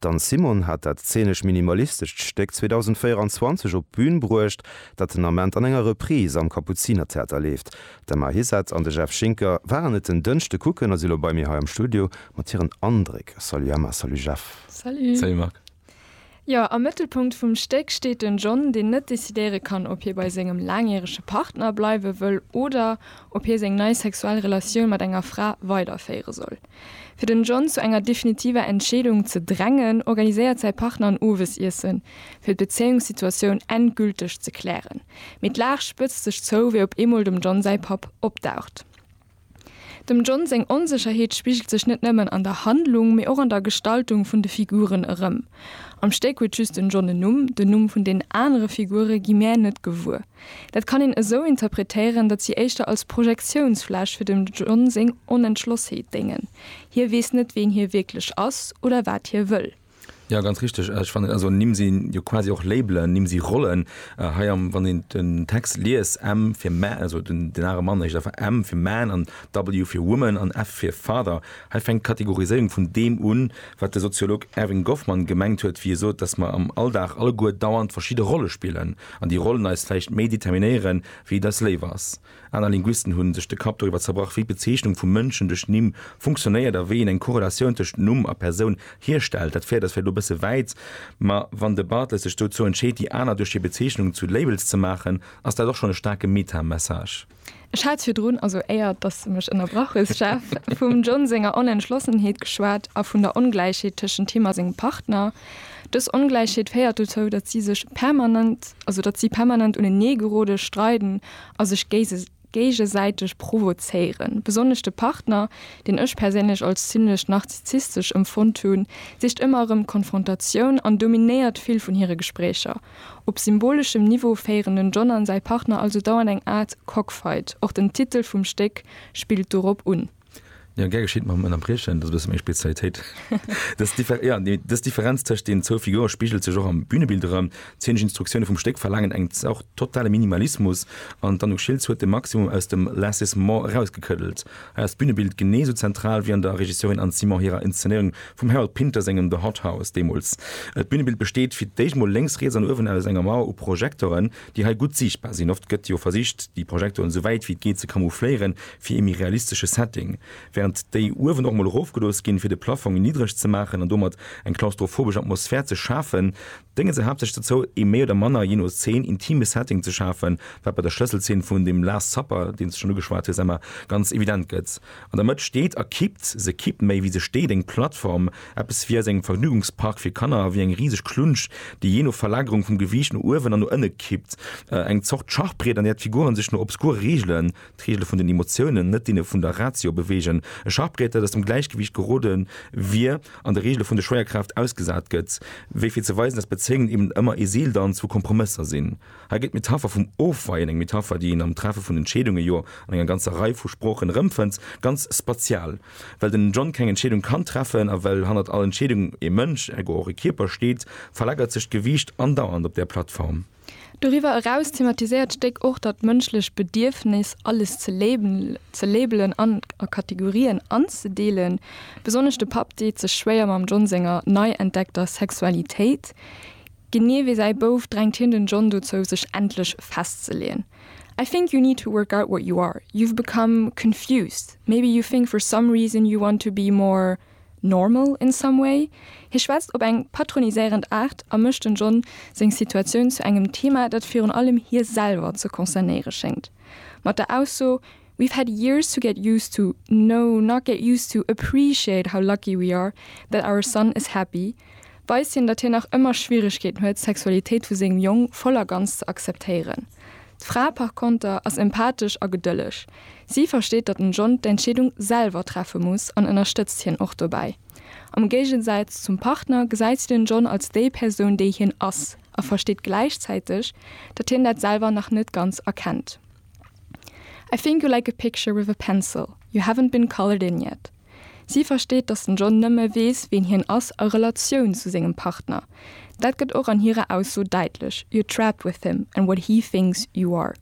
D'Anne Simon hat dat zeenesch-minimalistescht Stéck 2024 op d'Bün bruecht, dat den Ament an enger Reprise am Kapuzinertheater leeft. D'Emma Hissette an de Jeff Schinker waren et en Dënschde kucken a si lo bei mir hei am Studio mat hiren Andréck. Salut Emma, salut Jeff. Salut. Salut Marc. Jo, am Mëttelpunkt vum Stéck steet den John, deen net decidéiere kann, ob hie bei sengem laangjärege Partner bleiwe wëll oder ob hie seng nei sexuell Relatioun mat enger Fra weiderféiere soll. Fir den John zu enger definitiver Entscheedung ze drängen, organiséiert säi Partner en Owesiessen, fir d'Bezéiungssituatioun endgülteg ze klären. Mee d'Lag spëtzt sech zou, wéi op eemol dem John säi Papp opdaucht. Dem John seng Onsécherheet spigelt sech net nëmmen an der Handlung, mee och an der Gestaltung vun de Figuren erëm. Am Stéck huet just den John en Numm, den Numm vun den anere Figure gi mär net gewuer. Dat kann een esou interpretéieren, datt si éischter als Projektiounsfläch fir dem John seng Onentschlossheet déngen. Hie weess net, wien hie wierklech ass oder wat hie wëll. Jo, ganz richteg. Ech fannen, also Nimm sinn jo quasi och Labelen, Nimm si Rollen. Hei am, wann een den Text liest, M fir Man, also den, den are Mann heescht einfach M fir Man an W fir Woman an F fir Father. Hei fänkt d'Kategoriséierung vun deem un, wat de Soziolog Erving Goffman gemengt huet, wéi e sot, datt mer am Alldag alleguer dauernd verschidde Rolle spillen. an déi Rollen eis vläicht méi determinéiere wéi et eis léif ass. Aner Linguisten hu sech de Kapp doriwwer zerbrach, wéi d'Bezeechnung vu Mënschen duerch Nimm funktionéiert a wéi een eng Korrelatioun tëscht Numm a Persoun hierstellt. Dat féiert eis vläicht elo e bësse wäit, ma wann de Barthes sech dozou entscheet, déi aner duerch hir Bezeechnungen zu Labels ze maachen, ass dat och schonn e staarke Meta-Message. Ech hat virdrun, also éier dass de mech ënnerbrach hues, Jeff, vum John senger Onentschlossenheet geschwat a vun der Ongläichheet tëschent him a sengem Partner. Dës Ongläichheet féiert dozou, datt si sech permanent, also datt si permanent unenee geroden, streiden a sech géigesäiteg provozéieren. Besonnesch de Partner, deen ech perséinlech als zimlech narzizzistesch emfonnt hunn, sicht ëmmer erëm d'Konfrontatioun an dominéiert vill vun hire Gespréicher. Op symboleschem Niveau féieren den John an säi Partner also dauernd eng Aart Cockfight. Och den Titel vum Stéck spillt dorop un. Jo, gär geschitt, mam Ënnerbriechen, dat ass e bësse meng Spezialitéit. Dës Differenz tëscht deenen zwou Figure spigelt sech och am Bünebild erëm. D'zeenesch Instruktioune vum Stéck verlaangen eng Zort totale Minimalismus an d'Anouk Schiltz huet de Maximum aus dem Less is more erausgekëddelt. ass d'Bünebild genee esou zentral wéi an der Regisseurin Anne Simon hirer Inszenéierung vum Harold Pinter sengem The Hot House deemools. D'Bünebild besteet fir d'éischt mol lénks, riets an uewen aus enger Mauer u Projektoren, déi hei gutt siichtbar sinn. Oft gëtt jo versicht, déi Projektoren esou wäit wéi et geet ze camoufléieren fir ee méi realistesche Setting, wärend déi uewen och mol erofgelooss ginn, fir de Plaffong niddereg ze maachen an domat eng klaustrophobesch Atmosphär ze schafen. Dénge se haaptsächlech dozou, ee méi oder manner, jee no Zeen, intime Setting ze schafen, wat bei der Schlësselzeen vun dem Last Supper, deens de schonn ugeschwat hues, Emma, ganz evident gëtt. An der Mëtt steet a kippt, se kippt méi wéi se steet, eng Plattform, eppes wéi aus engem Vergnügungspark fir Kanner, wéi eng riseg Klunsch, déi jee no Verlagerung vum Gewiicht no uewen an no ënne kippt, eng Zort Schachbriet, an där d'Figuren sech no obskure Reegelen, d'Regele vun den Emotiounen, net deene vun der Ratio, beweegen, e Schachbriet, dat aus dem Gläichgewiicht gerode wier, an de Regele vun der Schwéierkraaft ausgesat gëtt, wéi fir ze weisen, datt Bezéiungen eben ëmmer ee Seeldanz vu Kompromësser sinn. Hei gëtt d'Metapher vum Ofweien, eng Metapher, déi een am Treffe vun Entscheedunge jo an enger ganzer Rei vu Sproochen erëmfënnt, ganz spatial. Well den John keng Entscheedung kann treffen a well hannert all Entscheedung e Mënsch, ergo och e Kierper, steet, verlagert sech d'Gewiicht andauernd op där Plattform. Doriwwer eraus thematiséiert d'Stéck och dat mënschlecht Bedierfnis, alles ze labelen an a Kategorien anzedeelen. Besonnesch de Papp deet sech schwéier mam John senger nei entdeckter Sexualitéit. Genee wéi säi Bouf drängt hien den John dozou, sech endlech festzeleeën, I think you need to work out what you are. You've become confused. Maybe you think for some reason you want to be more. Normal in some way? Hie schwätzt op eng patroniséierend Aart a mécht den John seng Situatioun zu engem Thema, dat virun allem hie selwer ze concernéiere schéngt, mat der Ausso We've had years to get used to, no, not get used to, appreciate how lucky we are that our son is happy. weist hien, datt hien nach ëmmer Schwieregkeeten huet, d'Sexualitéit vu sengem Jong voll a ganz ze akzeptéieren. D'Fra par konter ass empathesch a gedëlleg. Si versteet, datt den John d'Entscheedung selwer treffe muss an ënnerstëtzt hien och dobäi. Am Géigesäiz zum Partner gesäit si den John als déi Persoun, déi hien ass a versteet gläichzäiteg, datt hien dat selwer nach net ganz erkennt. I think you like a picture with a pencil, you haven't been colored in yet. Si versteet, datt den John nëmme weess, ween hien ass a Relatioun zu sengem Partner. Dat gëtt och an hirer Ausso däitlech, You're trapped with him and what he thinks you are.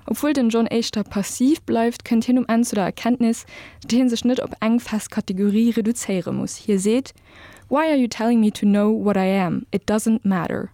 Obwuel den John éischter passiv bleift, kënnt hien um Enn zu der Erkenntnis, datt hie sech net op eng fest Kategorie reduzéiere muss. Hie seet, Why are you telling me to know what I am? It doesn't matter.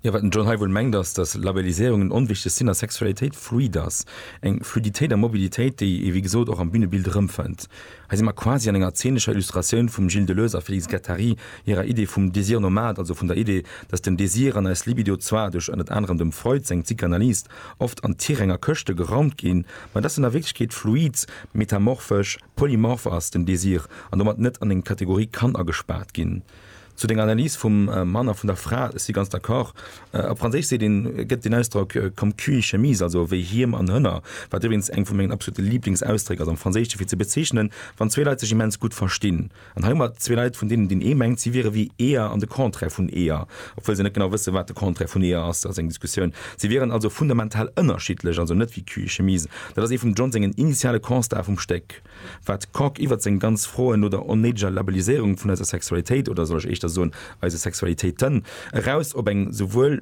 Jo, wat den John hei wuel mengt ass, datt Labelliséierung en onwichteg sinn a Sexualitéit fluid ass, eng Fluiditéit a Mobilitéit, déi ee wéi gesot och am Bünebild erëmfënnt. Hei si mer quasi an enger zeenescher Illustratioun vum Gilles Deleuze a Félix Guattari hirer Idee vum Désir nomade, also vun der Idee, datt den Désir an eis Libido zwar duerch ënnert anerem dem Freud seng Psychanalyse oft an d'Tiräng a Këschte geraumt ginn, mä datt en a Wierklechkeet fluid, metamorphesch, polymorph ass, den Désir, an domat net an eng Kategorie kann agespaart ginn. Zu denger Analys vum Mann a vun der Fra, ech si ganz d'accord. Op Franséisch seet een, gëtt deen Ausdrock comme cul et chemise, also wéi Hiem an Hënner, wat iwwregens eng vu mengen absolute Lieblingsausdréck ass am Franséischen, fir ze bezeechnen, wann zwee Leit sech immens gutt verstinn. An hei hu mer zwee Leit, vun deenen deen ee mengt, si wiere wéi Eeër an de Contraire vun Eeër, obwuel se net genau wëssen, wat de Contraire vun Eeër ass, dat ass eng Diskussioun, si wieren also fundamental ënnerschiddlech, also net wéi cul et chemise. Dat ass ee vum John sengen initiale Constatë vum Stéck. Wat Kok iwwert seng ganz Froen no der onnéideger Labelliséierung vun eiser Sexualitéit, oder soll ech éischter soen, eise Sexualitéiten, eraus op eng souwuel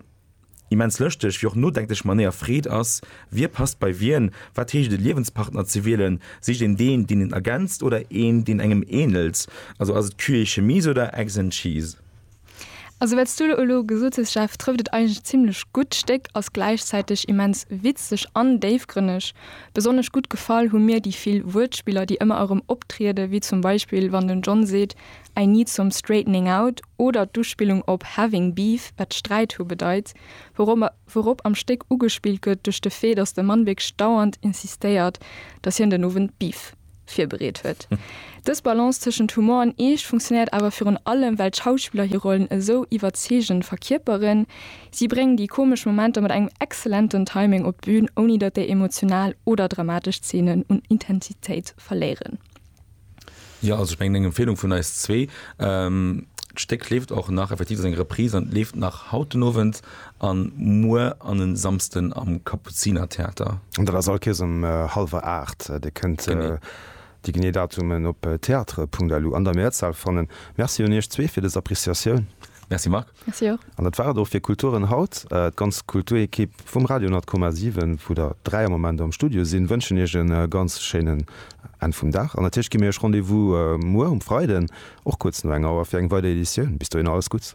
immens lëschteg wéi och nodenklech Manéier freet, ass, Wie passt bei wien? Wat heescht et, e Liewenspartner ze wielen? Sicht een deen, deen een ergänzt, oder een, deen engem änelt? Also ass et Cul et Chemise oder Eggs and Cheese? Also wat s du elo gesot hues Jeff, trëfft et eigentlech zimlech gutt. D'Stéck ass gläichzäiteg immens witzeg an déifgrënneg. Besonnesch gutt gefall hu mir déi vill Wuertspiller, déi ëmmer erëm optrieden, wéi zum Beispill wann den John seet I need some straightening out oder d'Uspillung op having beef, wat Sträit hu bedeit, wourop am Stéck ugespillt gëtt duerch de Fait, datt de Mann wierklech dauernd insistéiert, datt hien den Owend Beef. virbereet huet. Dës Balance tëschent Humor an Eescht funktionéiert awer virun allem, well d'Schauspiller hir Rollen esou iwwerzeegend verkierperen. Si bréngen déi komesch Momenter mat engem exzellenten Timing op d'Bün, ouni datt déi emotional oder dramatesch Zeenen un Intensitéit verléieren. Jo, also ech mengen eng Empfehlung vun eis zwee. D'Stéck leeft och nach, effektiv, et ass eng Reprise an leeft nach haut den Owend. An muer an en Samsten am Kapuzinertheater. An dat ass all Kees um halwer 8. Dir kënnt déi genee Datumen op theatre.lu an der Mehrzahl fannen. Merci un iech zwee fir des Appreciatioun. Merci Marc. Merci och. An dat war et och fir Kulturen haut. D'ganz Kulturekipp vum Radio 100,7, vu der 3 am Moment am Studio sinn, wënschen iech e ganz schéinen Enn vum Dag. An natierlech gi mir iech Rendez-vous muer um Freiden, och kuerz no enger Auer, fir eng weider Editioun. Bis dohinner alles Gutts.